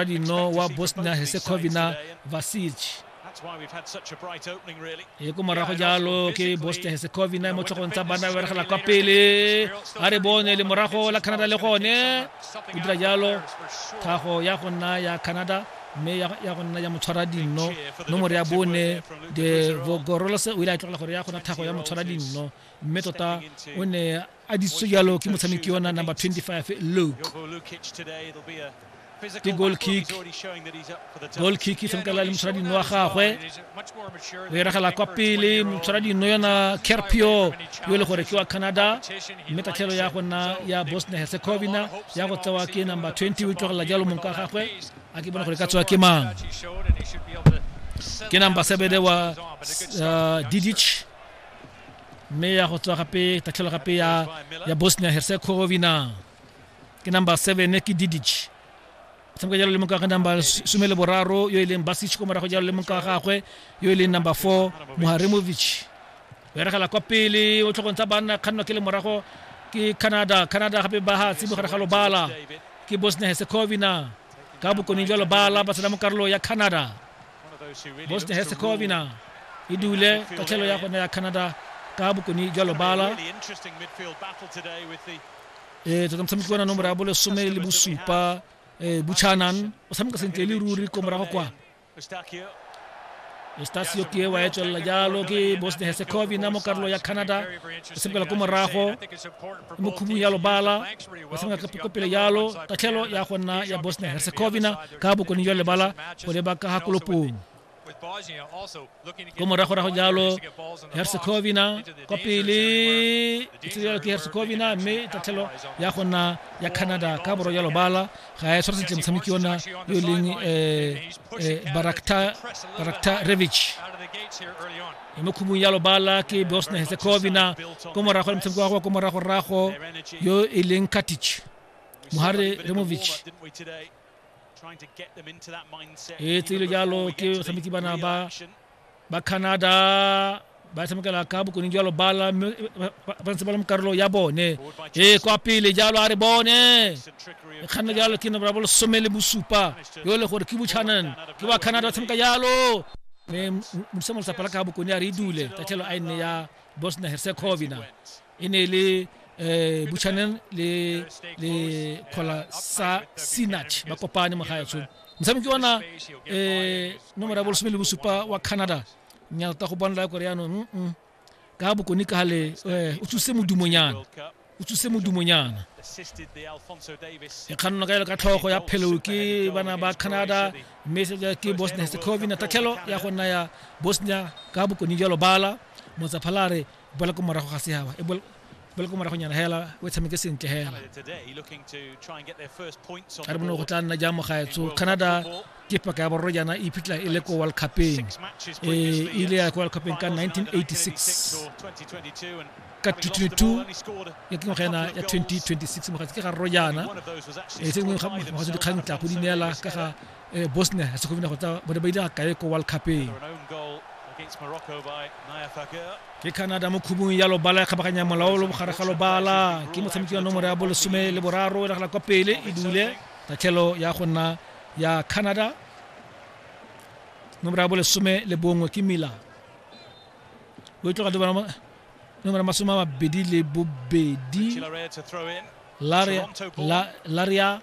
rino wa bosnia herzegovina vasic e ko morago jalo ke bosnia herzegovina mo tlhogong tsa bana beregela kwa pele a re bone le morago la canada le gone o dira jalo tlhago ya go nna ya canada mme ya go nna ya motshwara dinno nomoro ya bone de vogorolose o ile a tlogela gore ya gona tlhago ya motshwara dinno mme tota o ne a disitswe jalo ke motshameki yona number 25 luke ke goal kick goal kick e tshamekela le motshwara dino wa gagwe o eragela kwa pele motshwara dino yona kerpio yo e le gore ke wa canada mme tatlhelo ya go nna ya bosnia herzegovina ya go tsewa ke number 20 o tlogelela jalo mong ka gagwe a ke bona gore ka tsewa ke mang ke number sebede wa uh, didich mme ya go tswa gape tatlhelo gape ya ya bosnia herzegovina ke number seven ke didic tshameka jalo le moka ga number some le boraro yo e leng basic ko morago jalo le moka ga gagwe yo e leng number four moharemovic o eregela kwa pele o tlhogong tsa banna kgannwa ke le morago ke canada canada gape ba hatsi mogare ga lobala ke bosnia herzegovina ka bokone jwa lobala ba tsena mo karolo ya canada bosnia herzegovina e dule tatlhelo ya gone ya canada ka bokone jwa lobala ee tota motshameki wa na nomoro ya bolesome le bosupa um buchanan o tshameka sentle e le ruri ko morago kwa Eustacio ke wa etswelela jalo ke Bosnia Herzegovina mo karolo ya Canada e sepela ko morago mo khubung ya lobala o tshameka ka pokopele yalo tatlhelo ya go nna ya bosnia herzegovina ka bokone jwa lebala go leba ka ga kolopong ko moragorago jalo herzegovina kwa pele e tsirialo ke herzegovina mme tatlhelo ya go nna ya canada ka borwa jalo bala ga e tshwara sentle motshameki ona yo e leng eh, eh, barakta revich e mo khubung ya lobala ke bosnia herzegovina ko morago le motshameko wa go ko moragorago yo e leng katic mohare removic e tsile jalo ke batshameki bana ba ba canada ba tshamekela ka bokoning jwa lobala mme ba ntse ba le mo karolo ya bone e kwa pele jalo a re bone e kganna jalo ke nomoro ya bolesome le bosupa yo le gore ke buchanan ke wa canada ba tshameka jalo mme modisa molosapa la ka bokone a re e dule tatlhelo a e nne ya bosnia herzegovina e ne e le um buchanan le le kgola sa sinach ba kopane mo gaetsho motshameki ona um nomoro ya bolesome le bosupa wa canada nyalta go bonela kore yaanong ka bokone ka le eh, o tsuse modumonyana o tsuse modumonyana e kganno ka ele ka tlhogo ya pheleo ke bana ba canada mme ke bosnia herzegovina tatlhelo ya go nna ya bosnia ka bokone jalo bala motsaphalare bola ko morago ga seaba e ba le ko moragonyana hela o tshameke sentle hela a re bone go tla nna jang mogaetsho canada ke paka ya borro jaana e iphitlhela e le ko world cupeng e ile ya ko world cupeng ka 1986 ka 2022 ya ke ngwaga ena ya 2026 mogatsi ke ga rro jaana e se ngwe mogatsi dikgang tla go di neela ka ga eh, bosnia herzegovina go tsa bone ba ile ga kae ko world cupeng ke canada mo khubung ya lobala e kgabaganya molaolo bogare ga lobala ke motshameki wa nomoro ya bolesome le boraro e nagela kwa pele e dule tatlhelo ya go nna ya canada nomoro ya bolesome le bongwe ke mila o e tloga dibana nomoro masome a mabedi le bobedi laria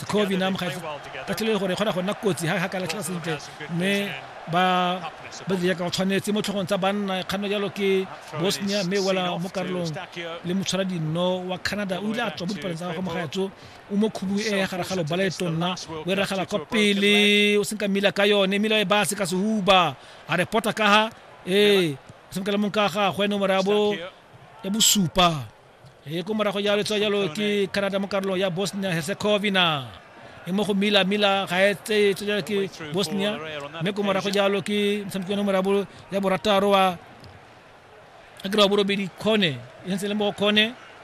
Scovie nam ga ka tlile gore e kgona go nna kotsi ga ka latlhela sentle mme ba ba dira ka tshwanetse mo tlhogong tsa banna kganno jalo ke bosnia mme wela mo karolong le motshwara dinno wa canada o ile a tswa mo dipalong tsa gagwe mogaetso o mo khubu e ya gare ga loba le tonna o e ragala kwa pele o senka mmila ka yone mmila e base ka sehuba a re pota ka ga ee o senka le mong ka gagwe nomoro ya bosupa e ko morago ya letso jalo ke canada mo karolong ya bosnia herzegovina e mo go mila mila ga e tseye tso jalo ke bosnia mme ko morago jalo ke motshameki one morabo ya borataro wa akere wa borobedi kgone e sentse le mo kgone